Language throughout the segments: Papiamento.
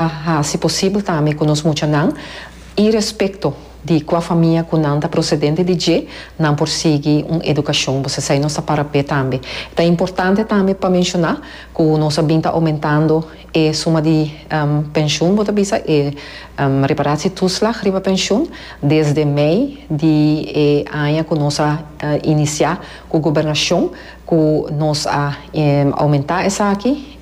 a hasi posibel tambe ku nos muchanan i respekto di kua famia ku nan ta prosedente di dje, nan por sigui un edukashon. Pues esei nos ta para p'e tambe. Ta importante tambe pa menshoná ku nos a bin ta oumentando e suma di penshun, bo ta bisa, e reparatietoeslag riba penshun, desde mei di e aña ku nos a inisiá ku gobernashon ku nos a oumentá esaki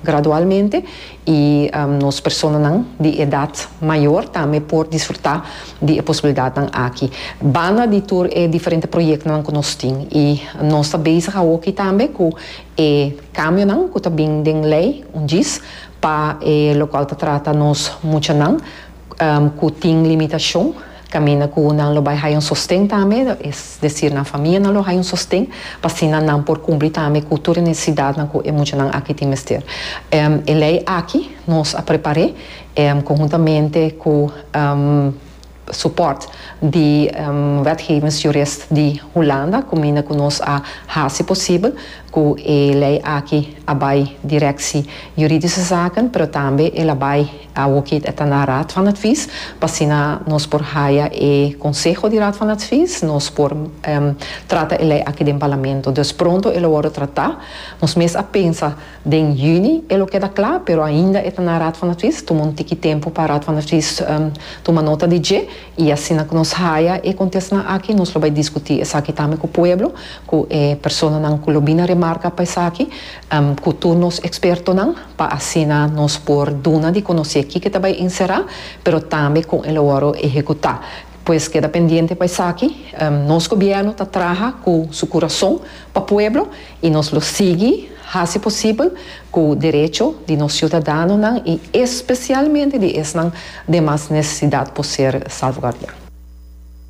gradualmente. I nos personanan di edat mayor tambe por disfruta di e posibilidatnan aki. Banda di tur e diferente proyectonan cu nos tin y nos ta bezig awoki tambe cu e cambionan cu ta bin den ley un djis pa e locual ta trata nos muchanan, cu tin limitacion, caminda cu nan lo bay haya un sosten tambe, es decir nan famianan lo haya un sosten, pa asina nan por cumpli tambe cu tur e necesidadnan cu e muchanan aki tin mester. E ley aki nos a prepare conhuntamente cu support di wetgevings jurist di Hulanda, caminda cu nos a haci posibel cu e ley aki a bay directie juridische zaken, pero tambe el a bay. Awo ki e ta na Raad van Advies, pa asina nos por haya e conseho di Raad van Advies, nos por trata e ley aki den Parlamento. Dus pronto e lo wordo trata. Nos mes a pensa den juni e lo keda kla, pero ainda e ta na Raad van Advies. Tuma un tiki tempu pa Raad van Advies tuma nota di dje. I asina ku nos haya e kontestnan aki, nos lo bai diskutí esaki tambe ku pueblo, ku e personanan ku lo bini a remarka pa esaki, ku tur nos ekspertonan. pa asina nos por duna di konosé kiko ta bai enserá, pero tambe kon e lo wòrdu ehekutá. Pues keda pendiente pa esaki. Nos gobièrnu ta traha ku su kurason pa pueblo i nos lo sigui hasi posibel ku derecho di nos siudadanonan i espesialmente di esnan den mas nesesidat por ser salvgardiá.